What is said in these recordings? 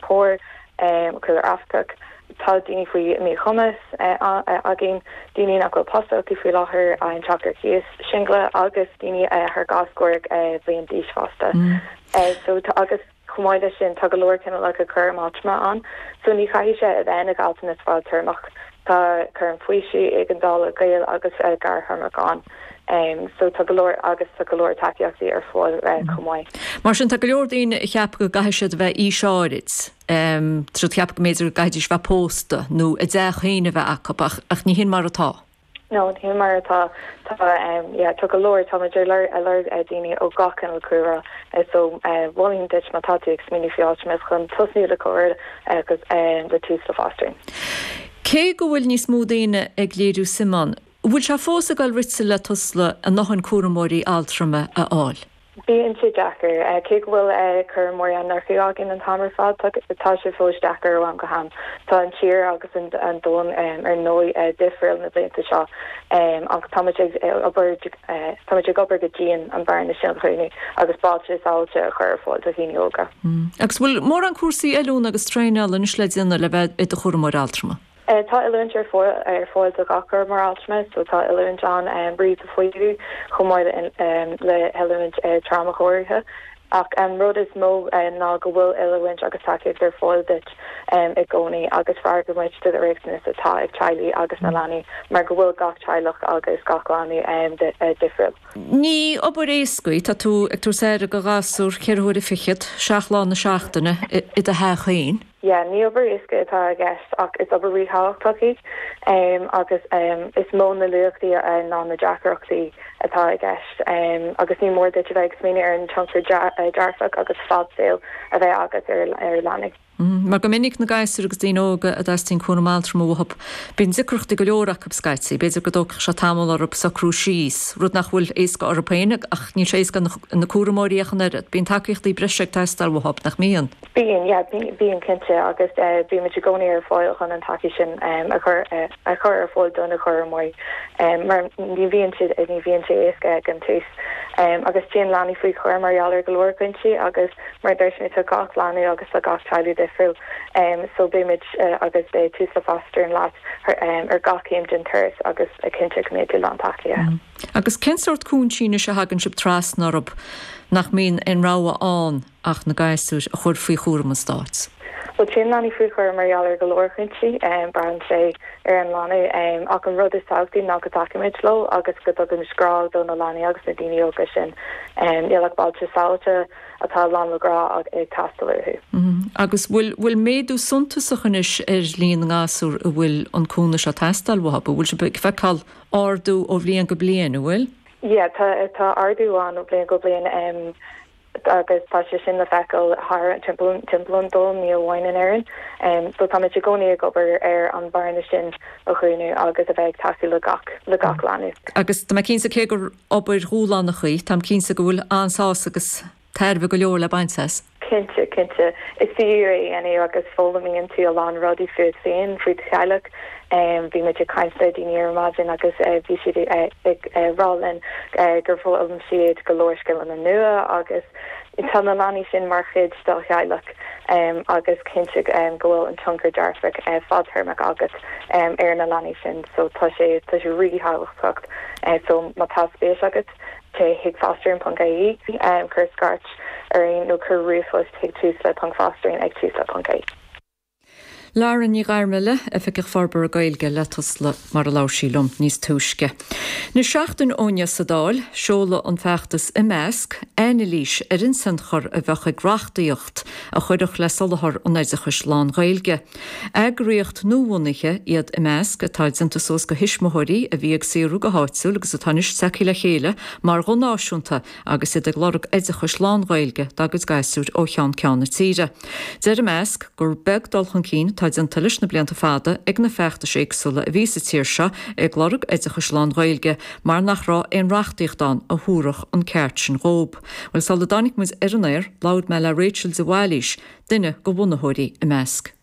fir, cúlra Afracach. Tá daoine faoi mhíchumas againn, daoine nach bhfuil post acu faoi láthair, i dteach ar cíos, singil agus daoine thar dhá scór bliain d'aois fosta. So tá, agus chomh maith leis sin, tá go leor cineálacha cúraim altrama ann. So ní chaithfidh sé a bheith ina ghealltanas fadtéarmach. Tá cúram faoisimh, éigeandála, gaol agus gearrthéarmach ann. so tá go leor agus tá go leor tacaíochtaí ar fáil chomh maith. Mar sin, tá go leor daoine a cheapfadh go gcaithfidh siad a bheith aois áirid, b'fhéidir, a cheapfadh go mb'fhéidir go gcaithfidís bheith pósta nó a dteach féin a bheith acu, ach ní hin mar atá. No, ní shin mar atá. Tá, yeah, tá go leor, tá muid ar lorg, a lorg daoine ó gach cineál cúlra, so mholfainn duit má tá tú ag smaoineamh faoi labhairt chun tosnú le comhairleoir le Tusla Fostering. Cé go bhfuil níos mó daoine ag léiriú suim ann, Bhfuil sé fós ag dul rite le Tusla a ndóthain cúramóirí altrama a fháil? Bíonn sé deacair. Cé go bhfuil cúramóirí á n-earcú againn an t-am ar fad, tá sé fós deacair ó am go ham. Tá an tír agus an domhan ar ndóigh difriúil na blianta seo ach táimid ag obair táimid ag obair go dian an bearna sin a dhúnadh agus bailte sábháilte a chur ar fáil do dhaoine óga. Agus bhfuil mórán cúrsaí oiliúna agus traenála anois le déanamh le bheith i do chúramóir altrama? Tá oiliúint ar fáil do gach cúramóir altrama so tá oiliúint ann roimh do fhaomhadh chomh maith le hoiliúint tráma áirithe ach an rud is mó ná go bhfuil oiliúint agus tacaíocht ar fáil duit i gcónaí agus freagraíonn muid do riachtanais atá ag teaghlaigh agus na leanaí mar go bhfuil gach teaghlach agus gach leanbh difriúil. Ní obair éasca í, tá tú ag tabhairt aire do ghasúr ceithre huaire an chloig fichead, seacht lá na seachtaine, i do theach féin. yeah ní obair éasca atá i gceist ach is obair ríthábhachtach í agus is mó na luaíochtaí ná na deacrachtaí atá i gceist agus ní mór duit a bheith ag smaoineamh ar an tionchar dearfach agus fadsaoil a bheidh agat ar leanaí. Mar go minic na gasúir agus daoine óga a dteastaíonn cúram altrama uathu, bíonn deacrachtaí go leor acu scaití. B'fhéidir go dtógfadh sé tamall orthu socrú síos, rud nach bhfuil éasca orthu féin ach níl sé éasca ar na cúramóirí ach an oiread. Bíonn tacaíochtaí breise ag teastáil uathu, nach mbíonn? Bíonn, yeah, bíonn cinnte agus bíonn muid i gcónaí ar fáil chun an tacaíocht sin a chur ar fáil do na cúramóirí mar ní bhíonn sé, ní bhíonn sé éasca ag an tús agus téann leanaí faoi chúram mar gheall ar go leor cúinsí agus mar a dúirt mé tá gach leanbh agus tá gach teaghlach difriúil so beidh muid agus beidh Tusla Fostering leat ar gach céim den turas agus ag cinntiú go mbeidh tú lán tacaithe. Agus cén sórt cúinsí anois a thagann sibh trasna orthu nach mbíonn aon rogha ann? ach na gasúir a chur faoi chúram an stáit. Bhuel, téann leanaí faoi chúram mar gheall ar go leor cúinsí. Braitheann sé ar an leanbh. Ach an rud is tábhachtaí ná go dtacaímid leo agus go dtugaimid grá do na leanaí agus na daoine óga sin. Níl ach bailte sabháilte atá lán le grá ag teastáil uathu. Agus an bhfuil méadú suntasach anois ar líon na ngasúr a bhfuil an cúnamh seo ag teastáil uathu? Bhfuil sibh ag feiceáil ardú ó bhliain go bliain, an bhfuil? Yeah, tá tá ardú ann ó bhliain go bliain. agus tá sé sin le feiceáil thar timpeall an domhain, ní amháin in Éirinn. Só táimid i gcónaí ag obair ar an bhearna sin a dhúnadh agus a bheith ag tacú le gach leanbh. Agus tá mé cinnte, cé gur obair dhúshlánach í, táim cinnte go bhfuil an-sásamh agus tairbhe go leor le baint as. Cinnte, cinnte. Is fíor é, a Áine, agus foghlaimíonn tú a lán rudaí fút féin, faoi do theaghlach, Bhí muid ag caint le daoine ar maidin agus bhí siad ag rá linn gur fhoghlaim siad go leor scileanna nua agus tá na leanaí sin mar chuid dá theaghlach agus cinnte go bhfuil an tionchar dearfach fadtéarmach agat ar na leanaí sin so tá sé tá sé ríthábhachtach so má tá spéis agat téigh chuig fostering ponc ie cuir scairt orainn nó cuir ríomhphost chuig Tusla ponc fostering ag Tusla ponc ie. Lauren Ní Ghairmile, Oifigeach Forbartha Gaeilge le Tusla, mar a labhair sí liom níos túisce. Anois seachtain ó inniu sa Dáil, sheol an feachtas Imeasc, anailís ar an tionchar a bheadh ag reachtaíocht a chuirfeadh le soláthar an oideachais lán-Ghaeilge. Eagraíocht nuabhunaithe iad Imeasc atá déanta suas go thuismitheoirí a bhí ag saothrú go háitiúil agus atá anois tagtha le chéile mar ghuth náisiúnta agus iad ag lorg oideachais lán-Ghaeilge dá gcuid gasúir ó cheann ceann na tíre. Deir imeasc gur beag dul chun cinn atá déanta leis na blianta fada ag na feachtais éagsúla a bhí sa tír seo ag lorg oideachais lán-Ghaeilge mar nach raibh aon reachtaíocht ann a thabharfadh an ceart sin dhóib. Bhuel, sula dtáinig muid ar an aer, labhair mé le Rachel de Bhailís, duine de bhunaitheoirí imeasc.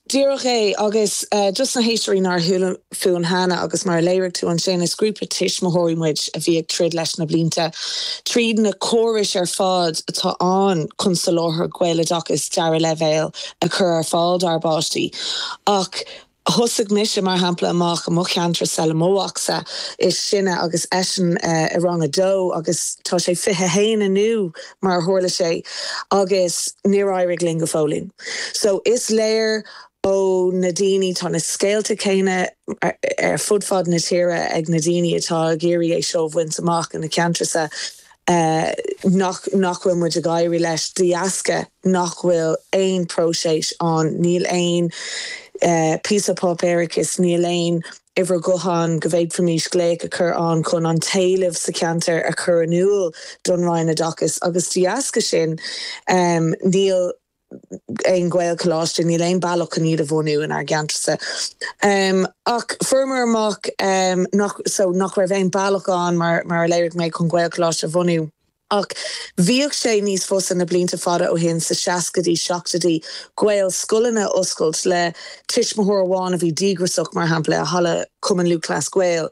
Díreach é. Agus dos na héisteoirí nár chuala fúinn cheana, agus mar a léirigh tú ansin, is grúpa tuismitheoirí muid a bhí ag troid leis na blianta tríd na córais ar fad atá ann chun soláthar Gaeloideachais dara leibhéal a chur ar fáil dár bpáistí. Ach thosaigh mise, mar shampla, amach i mo cheantar, dár mo mhacsa is sine, agus eisean i rang a dó agus tá sé 21 inniu. mar a tharla sé, agus níor éirigh linn go fóillín. So, is léir ó na daoine, tá na scéalta céanna ar fud fad na tíre ag na daoine atá ag iarraidh é seo a bhaint amach ina ceantracha, nach, nach bhfuil muid ag éirí leis, de dheasca nach bhfuil aon próiseas ann, níl aon phíosa páipéarachais, níl aon. uimhir gutháin go bhféadfaimis glaoch a chur ann chun an t-éileamh sa cheantar a chur in iúl don Roinn Oideachais agus de dheasca sin níl aon Ghaelcholáiste, níl aon bealach chun iad a bhunú inár gceantarsa. Ach fuaireamar amach nach raibh aon bealach ann, mar a léirigh mé, chun Gaelcholáiste a bhunú. Ach bhíodh sé níos fusa na blianta fada ó shin, sna seascaidí, seachtóidí, Gaelscoileanna a oscailt le tuismitheoir amháin a bhí díograiseach, mar shampla, i halla Chumann Lúthchleas Gael.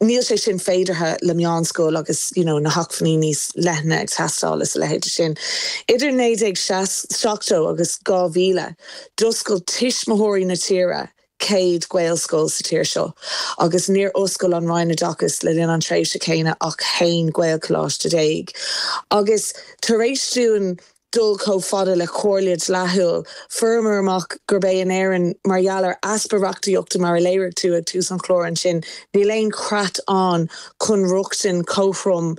Níl sé sin féideartha le meánscoil agus you know na hacmhainní níos leithne ag teastáil is a leithéid de sin. Idir naoi déag seasc, seachtó agus dhá mhíle, d'oscail tuismitheoirí na tíre céad Gaelscoil sa tír seo agus níor oscail an Roinn Oideachais le linn an tréimhse chéanna ach haon Ghaelcholáiste déag. Agus tar éis dúinn dul chomh fada le comhairle dleathúil, fuaireamar amach gurb é in Éirinn, mar gheall ar easpa reachtaíochta mar a léirigh tú ag tús an chláir ansin, níl aon chreat ann chun rochtain chothrom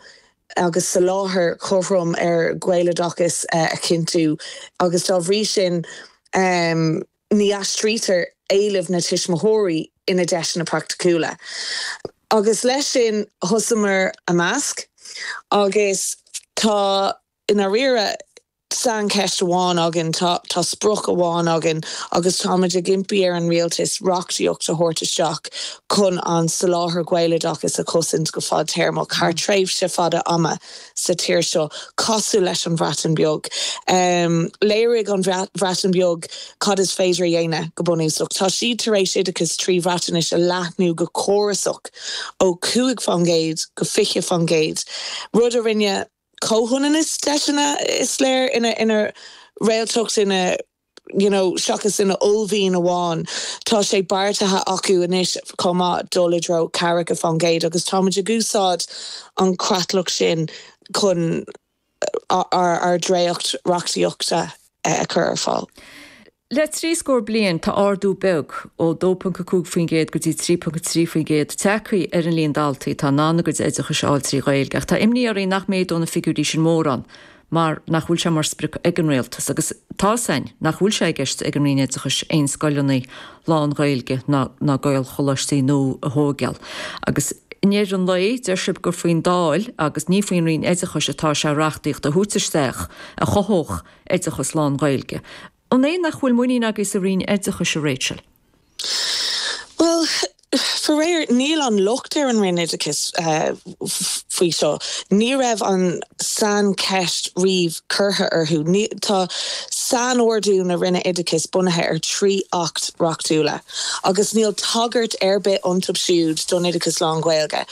agus soláthar cothrom ar Ghaeloideachas a chinntiú agus dá bhrí sin, Ní aistrítear éilimh na tuismitheoirí ina deiseanna praiticiúla. Agus leis sin thosaíomar IMEASC agus tá i ndáiríre saincheist amháin againn, tá sprioc amháin againn agus táimid ag impí ar an Rialtas reachtaíocht a thabhairt isteach chun an soláthar Gaeloideachais a chosaint go fadtéarmach thar tréimhse fada ama. sa tír seo, cosúil leis an Bhreatain Bheag. Léirigh an Bhreatain Bheag cad is féidir a dhéanamh, go bunúsach. Tá siad tar éis oideachas trí Bhreatnais a leathnú go córasach ó chúig faoin gcéad go fiche faoin gcéad, rud a rinne comhionannas deiseanna, is léir, ina réaltacht, ina. you know, seachas ina uaillmhian amháin, tá sé beartaithe acu anois chomh maith dul i dtreo ceathracha faoin gcéad agus táimid ag úsáid an chreatlach sin chun ár dréacht reachtaíochta a chur ar fáil. Le trí scór bliain, tá ardú beag, ó 2.5% go dtí 3.3%, tagtha ar an líon daltaí atá in ann a gcuid oideachais a fháil trí Ghaeilge, ach tá imní orainn nach méadóidh na figiúirí sin mórán. mar nach bhfuil sé mar sprioc ag an Rialtas, agus tá a fhios againn, nach bhfuil sé i gceist ag an Roinn Oideachais aon scoileanna lán-Ghaeilge ná ná Gaelcholáistí nua a thógáil. Agus i ndeireadh an lae, deir sibh gur faoin Dáil agus ní faoin Roinn Oideachais atá sé reachtaíocht a thabhairt isteach a chothódh oideachas lán-Ghaeilge. An é nach bhfuil muinín agaibh sa Roinn Oideachais, a Rachel? Bhuel, faraor, níl an locht ar an Roinn Oideachais faoi seo. Ní raibh an saincheist riamh curtha orthu. Tá sainordú na Roinne Oideachais bunaithe ar thrí Acht Reachtúla agus níl tagairt ar bith iontub siúd don oideachas lán-Ghaeilge.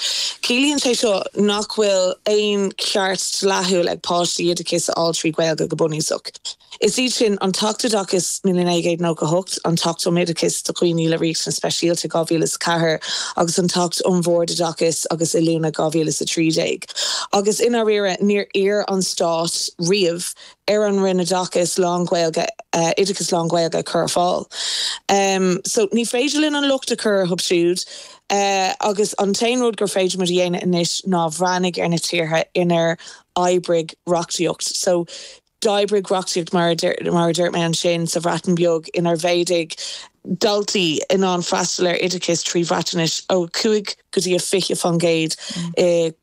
Ciallaíonn sé seo nach bhfuil aon cheart dleathúil ag páistí oideachas a fháil trí Ghaeilge go bunúsach. Is iad sin, an tAcht Oideachais 1998, an tAcht um Oideachas do Dhaoine le Riachtanais Speisialta 2004 agus an tAcht um Bhoird Oideachais agus Oiliúna 2013. Agus, i ndáiríre, níor iarr an Stát riamh ar an Roinn Oideachais lán-Ghaeilge, oideachas lán-Ghaeilge a chur ar fáil. So, ní féidir linn an locht a chur orthub siúd. Agus an t-aon rud gur féidir muid a dhéanamh anois ná breathnú ar na tíortha inar oibrigh reachtaíocht. So. D'oibrigh reachtaíocht, mar a dúirt mé, ansin sa Bhreatain Bheag inar mhéadaigh daltaí in ann freastal ar oideachas trí Bhreatainis ó 5 go dtí 20% i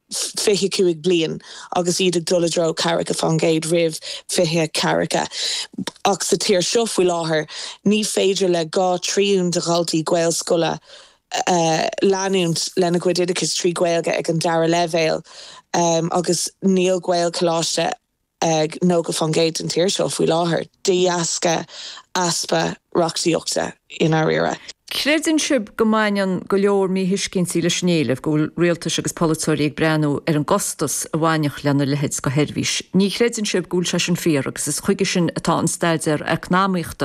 25 bliain agus iad ag dul i dtreo 50% roimh 2040. Ach sa tír seo faoi láthair, ní féidir le dhá thrian de dhaltaí Gaelscoile leanúint lena gcuid oideachais trí Ghaeilge ag an dara leibhéal agus níl Gaelcholáiste ag 90% den tír seo faoi láthair de dheasca easpa reachtaíochta i ndáiríre. Creideann sibh go mbaineann go leor míthuiscintí leis an éileamh, go bhfuil rialtais agus polaiteoirí ag breathnú ar an gcostas a bhainfeadh lena leithéid de sheirbhís. Ní chreideann sibh go bhfuil sé sin fíor agus is chuige sin atá an Staidéar Eacnamaíochta.